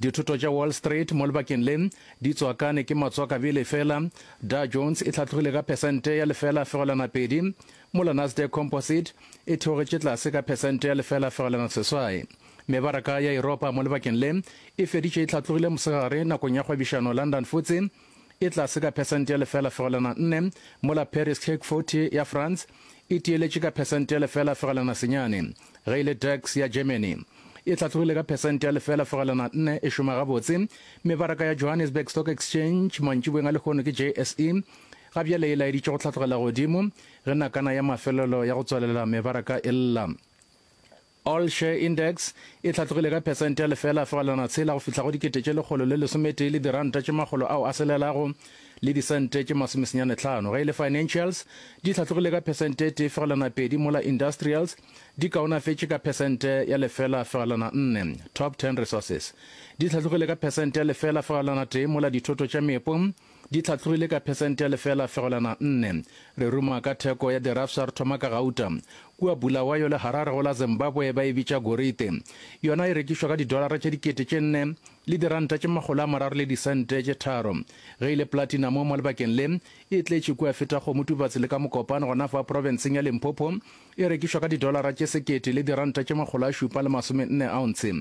Dithoto tša Wall Street mo lebakeng le di tswakane ke matswakabi lefela. Dow Jones e hlatlogile ka phesente ya lefela fegelwana pedi, mola Nasdaq Composite e theogetše tlase ka phesente ya lefela fegelwana seswai. Mebaraka ya Europa mo lebakeng le e feditše e hlatlogile mosegare nakong ya kgwebišano London Futse e tlase ka phesente ya lefela fegelwana nne, mola Paris CAC 40 ya France e tiyeletše ka phesente ya lefela fegelwana senyane, ge e le DAX ya Germany e hlatlogile ka phesente ya lefela fegelwana nne e šoma gabotse. Mebaraka ya Johannesburg Stock Exchange mantšiboeng a lehono ke JSE ga bjale e laeditše go hlatlogela godimo ge nakana ya mafelelo ya go tswalela mebaraka e lla. All Share Index e hlatlogile ka phesente ya lefela fegelwana tshela go fihla go dikete tše lekgolo le lesometee le diranta tše makgolo ao a selelago le disente tše masomesenyane tlhano, ge e le Financials di hlatlogile ka phesente tee fegelwana pedi mola Industrials di kaonafetše ka phesente ya lefela fegelwana nne. Top Ten Resources di hlatlogile ka phesente ya lefela fegelwana tee mola dithoto tša meepo, Di tlhatlogile ka phesente ya lefela fegelwana nne. Re ruma ka theko ya dirafsa re thoma ka gauta. Kua Bulawayo le Harare go la Zimbabwe ba e bitša gorite. Yona e rekišwa ka didolara tše dikete tše nne le diranta tše makgolo a mararo le disente tše tharo. Ge e le platinamo mo lebakeng le, e tletše kua feta kgomo tubatse le ka mokopane gona fa profenseng ya Limpopo, E rekišwa ka didolara tše sekete le diranta tše makgolo a šupa le masome nne ounce.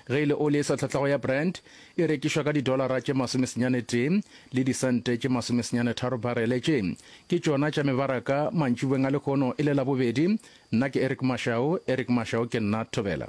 Ge e le oli e sa tlhatlhago ya Brent, e rekišwa ka didolara tše masome senyane tee le disente tše masome senyane tharo barele. Tše ke tšona tša mebaraka mantšibeng a lehono e le Labobedi. Nna ke Eric Mashau, Eric Mashau ke nna Thobela.